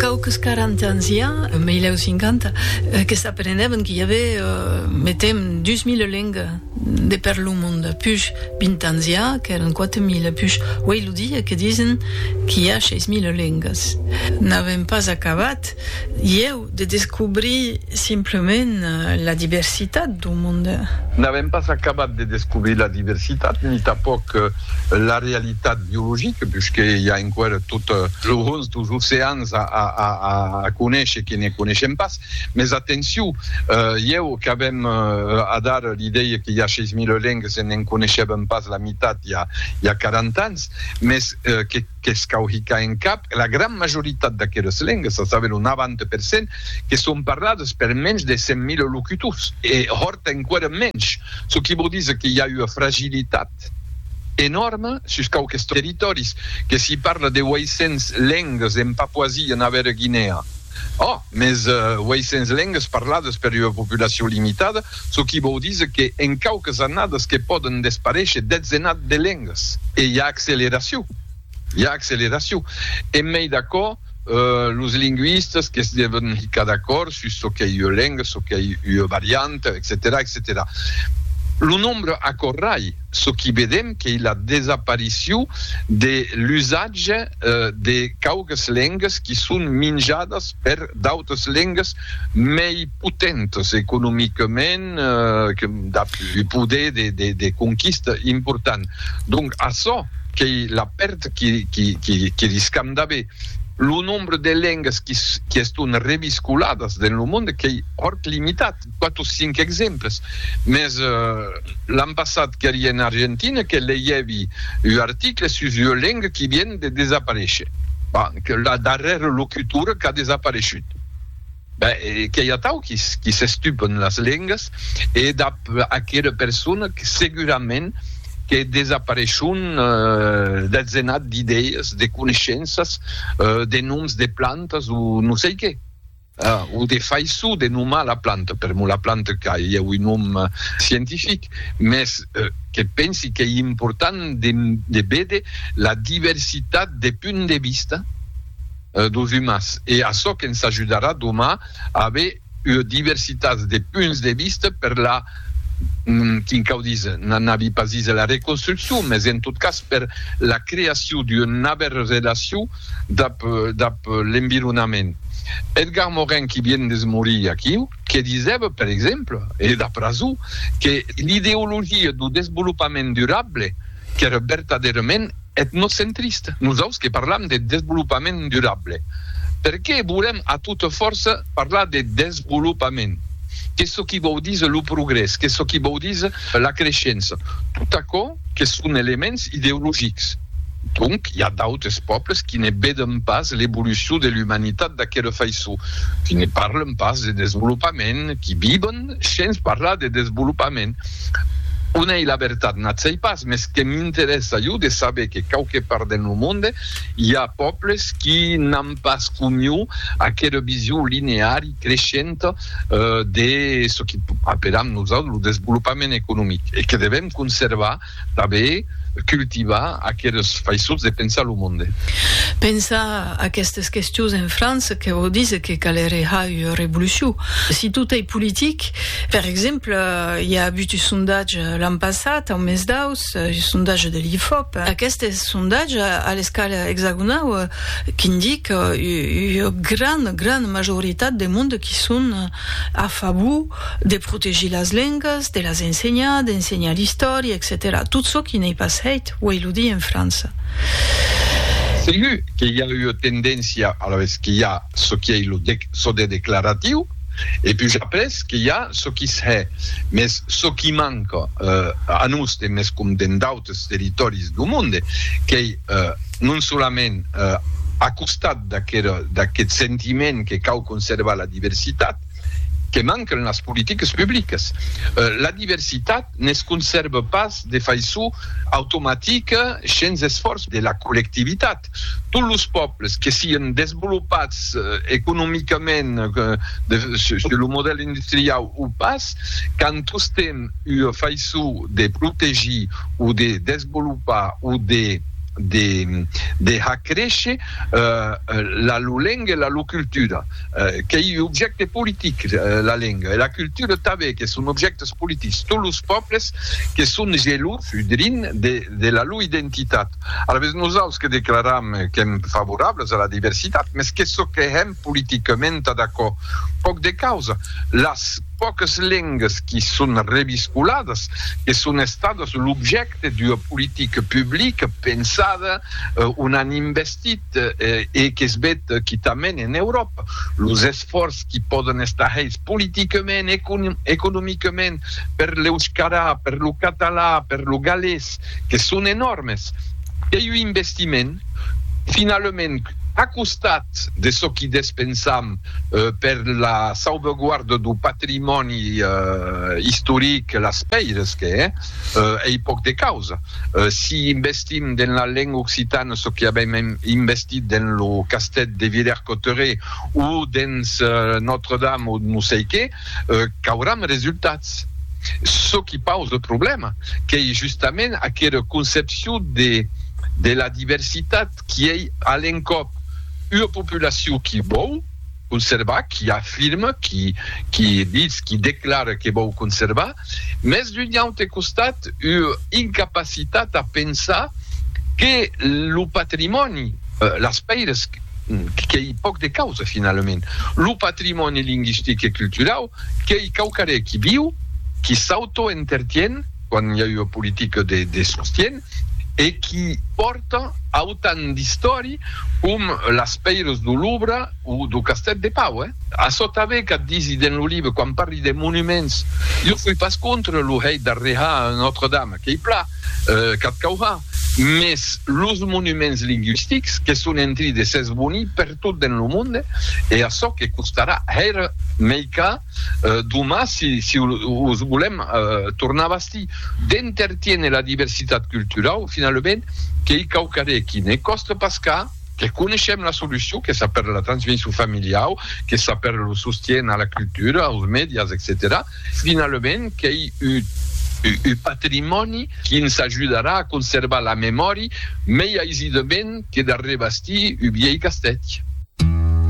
Quauques quaranta ans i a, en 1050, que s'aprenèven qu'i avè, metem, dus mile lengas de per lo monde, push vint ans i a qu'èran quate mile, push uei lo dia que disen qu'i a sheis mile lengas. N'avèm pas acabat, ieu. De descobrir simplement la diversitat d'un monde. N'avèm pas acabat de descobrir la diversitat, ni tanpòc la realitat biologica, puisque i a enqüèra tot lo hons dos oceans a conéisher que ne conéishem pas. Mès atenciu, ieu qu'avèm adara l'idèia que i a 6.000 lengas e ne'n conéishèvem pas la mitat i a 40 ans, mès que. qu'es cauhica en cap, la gran majoritat d'aqueles lengas, a saber lo 90 per cent, que son parlades per menys de 100.000 locutors. E hòrt enqüèra menys, çò qui vòu díser que i a ua fragilitat enòrma sus quauques territòris, que s'i parla de 800 lengas en Papuasia Navèra Guinèa. Òh, mès 800 lengas parladas per ua populacion limitada, çò qui vòu díser que en quauques annadas que pòden desparéisher detzenat de lengas. E i a acceleracion. I a acceleracion. En mei d'aquò, los lingüistas que's devon hicar d'acòrd sus çò qu'ei ua lenga, çò qu'ei ua varianta, etcetèra, etcetèra. Lo nombre aquò rai. çò qui vedem qu'ei la desaparicion de l'usatge de quauques lengas qui son minjadas per d'autres lengas mei potentas economicament que dab un poder de conquista important. Donc açò qu'ei la pèrd que riscam d'aver. Lo nombre de lengas qui eston reviscoladas dens lo monde qu'ei hòrt limitat. 4 o 5 exemples, mès l'an passat qu'eri en Argentina que leièvi un article sus ua lenga qui vien de desaparéisher, ben, que la darrèra locutora qu'a desapareishut. Ben, que i atau qui s'estupen las lengas e dab aquera persona segurament que desapareishon deth zenat d'idèas, de coneishenças, de noms de plantas o non sei qué. O de faiçon de nomar la planta, per mo la planta qu'a ieu un nom scientific, mès que pensi qu'ei important de véder la diversitat de punts de vista dos umans e açò que'ns ajudarà doma a aver ua diversitat de punts de vista per la, quin cau díser, n'anavi pas díser la reconstruccion, mès en tot cas per la creacion d'ua navèra relacion dab dab l'environament. Edgar Morin qui vien de se morir aquiu, que disèva, per exemple, e d'après jo, que l'ideologia dau desvolopament durable qu'èra vertadèrament etnocentrista. Nosaus que parlam de desvolopament durable, per qué volèm a tota fòrça parlar de desvolopament? Qu'es çò qui vòu díser lo progrès, qu'es çò qui vòu díser la creishença, tot aquò, que son elements ideologics. Donc, i a d'autres pòbles qui ne veden pas l'evolucion de l'umanitat d'aquela faiçon, qui ne parlen pas de desvolopament, qui viven shens parlar de desvolopament. On ei la vertat? N'ac sei pas, mès que m'interèssa jo de saber que quauque part dens lo monde i a pòbles qui n'an pas comiu aquela vision lineari, creishenta de çò que apelam nosautres lo desvolopament economic e que devèm conservar, tanben cultivar aqueles faiçons de pensar lo monde. Pensar aquestes questions en França que vò díser que calereiá ua revolucion. Si tot ei politic, per exemple, i a avut un sondatge l'an passat, au mes d'aus, un sondatge de l'Ifop, aqueste sondatge a l'escala exagonau, Qu'indic ua gran, gran majoritat de monde qui son a favor de protegir las lengas, de las ensenhar, d'ensenhar l'istòria, etcetèra Tot çò qui n'ei pas hèit, uèi lo di en França. Segur que i a ua tendéncia alavetz que i a çò qui ei lo çò de declaratiu e puja après que i a çò qui s hè. Mès çò qui manca a nos, demescom dentd totes territòris du monde, qu'ei non solament a costat d'aqueth sentiment que cau conservar la diversitat, que manquen las politiques publiques. La diversitat ne se conserve pas de faiçon automatica shens esfòrç de la collectivitat. tots los pòbles que sián desvolopats economicament sus lo modèl industriau o pas, qu'an tostemp ua faiçon de protegir o de desvolopar o de har créisher la lor lenga e la lor cultura, qu'ei un objècte politic la lenga e la cultura tanben, que son objèctes politics, tots los pòbles que son gelosos drin de la lor identitat. Alavetz, nosaus que declaram qu'èm favorables a la diversitat, mès qu'es çò que hèm politicament a d'aquò. Pòc de causa, las pòques lengas qui son reviscoladas, que son estadas l'objècte d'ua politica publica pensada, on an investit e qu'es vet quitament en Euròpa, los esfòrç qui pòden estar hèits politicament, economicament, per l'euscara, per lo català, per lo galés. que son enòrmes. Ei un investiment, finalament, a costat de çò qui despensam per la sauveguarda du patrimòni istoric, las pèires que hè, ei pòc de causa. Si investim dens la lenga occitana çò qu'avèm investit dens lo castèth de Villers-Cotterets o dens Notre-Dame o non sei qué, qu'auram resultats. Çò qui pause le problèma qu'ei justament aquera concepcion de de la diversitat qui ei a l'encòp ua populacion qui vòu conservar, qui afirme, qui qui ditz, qui declare que vòu conservar, Mès d'un aute costat, ua incapacitat a pensar que lo patrimòni, las pèires qu'ei pòc de causa finalament, lo patrimòni lingüistic e culturau qu'ei quauquarré qui viu, qui s'autoentertien, quan i a ua politica de sostien, e qui pòrta autan d'istòri com las pèiras do Louvre o do Castèth de Pau. Açò tanben qu'a disi dens lo libre, quan parli de monuments, jo soi pas contra lo hèit d'arrejar Notre Dame, qu'ei pla, qu'ath caurà, mès los monuments lingüistics que son en tri de s'esbonir pertot dens lo monde, e açò que costarà hèr mei ca. Doman, si os volèm tornar bastir, d'entertiéner la diversitat culturau, finalament, qu'ei quauquarre aquí. Ne còste pas cas, que coneishem la solucion, qu'es a pèrdre la transmission familiau, qu'es a pèrdre lo sostien a la cultura, aus medias, etcetèra, finalament, qu'ei un patrimòni qui ens ajudarà a conservar la memòri mei aisidament que d'arrebastir un viei castèth.